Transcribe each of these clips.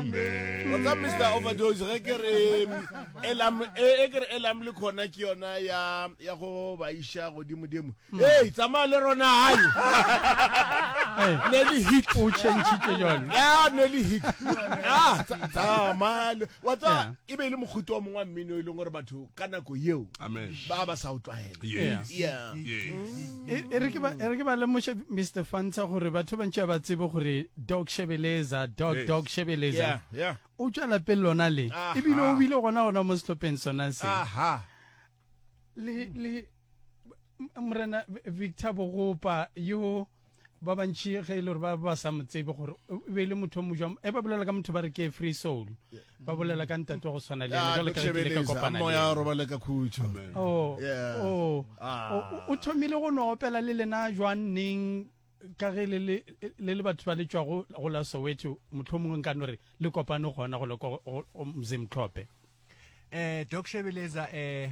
mr overdose ge ke re elam e, e ke re elam le khona ke yona ya ya go ba isha godimo dimo mm. hey tsamaya le rona hai ne le hit o chentshitse jalo ya ne le hit ah tsamaya wa tsa e be e le mogote wa mongwe wa mmino e leng gore batho ka nako yeo ba ba sa o tlwaela yes yeah e, e re ke ba e re ke ba lemoše Mr Fanta gore batho ba ntse ba tsebe gore dog shebeleza dog yes. dog shebeleza yeah, yeah. o tswa lapeng lona le e bile o bile gona gona mo setlhopheng sona se aha le le morena Victor Bogopa yo ba bantši ge e le gore ba ba sa mo tsebe gore e be e le motho mo jwang e ba bolela ka motho ba re ke free soul ba bolela ka ntate wa go tshwana le ena jalo ka ke le ka kopana le moya robale ka khutšo oh, oh. Ah. o thomile go no opela le lena jwang neng ka ge le le batho ba le tšwago go la soweto motlho mongwe nka no re le kopane gona go le go mzimtlhope um eh, doc shebeleza um eh,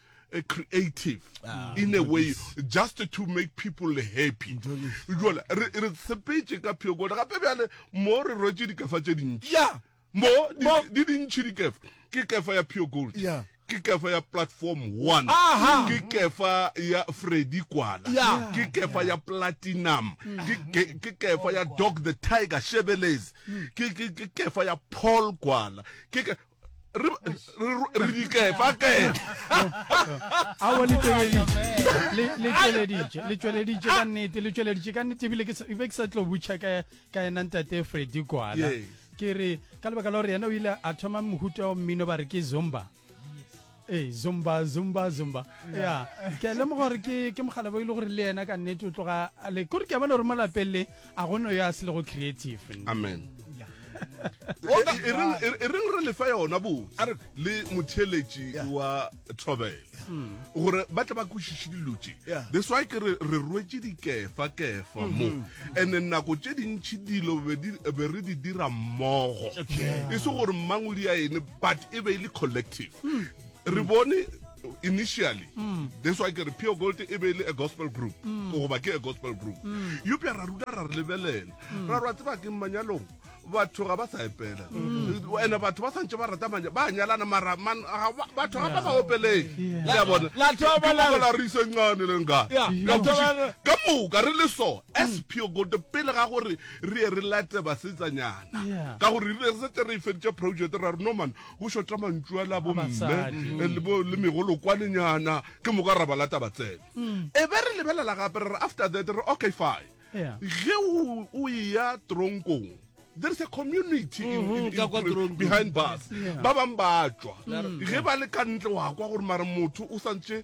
a creative ah, in a way just to make people happy jole re sepetse ka phekole gape bjale mo re rwetse dikefa tse dintši mo di dintši dikefa ke kefa ya pure gold ke kefa ya platform one ke kefa ya freddy kwala ke kefa ya platinum ke kefa ya dog the tiger shebeles ke kefa ya paul kwala re di kefa kefaleeleditše ka nnete le tšweleditše ka nnete ebile ke be ke sa tlo butšha ka ena ntate fredi kwana ke re ka lebaka la gore yena o ile a thoma mohuta wa mmino ba re ke zomba ee zumba zumba zumba ya ke a lemoga gore ke ke mogalabo e le gore le yena ka nnete o tloga a le kore ke a bona gore mo lapeng le a go no yo a se lego creative amen e reng e- e reng re lefa yona bo a re le motheeletši wa thobele gore ba tle ba kwešiše dilo tše Yeah. that's why ke re re rwetse dikefa kefa mo and nako tše dintšhi dilo be di- be re di dira mmogo e se gore mmangwedi a ene but e be e le collective mm. re bone initially mm. that's why ke re pure gold e be e le a gospel group mm. goba ke a gospel group mm. eupša ra ruta ra re lebelela mm. ra rwa tseba ke manyalong batho ga ba sa epela mm. ene batho ba santse ba rata manya ba nyalana mara batho ga ba sa opeleng ya bone la re isencane le nka ka moka re le so as mm. pure gold pele ga gore re ye re late basetsanyana Yeah. ka gore rile re setse re e feditše project ra re norman go šota mantšu a la bomme Basadi. eh, le bo- le megolokwanenyana ke moka ra ba lata ba tsene Mm. e be re lebelela gape re re after that re okay fine Yeah. ge o o ya tronkong there is a community in- Mhm, in- ka kwa in- Tronkong. behind bus Yeah. ba bangwe ba tswa ge ba le ka ntle wa kwa gore mara motho o santse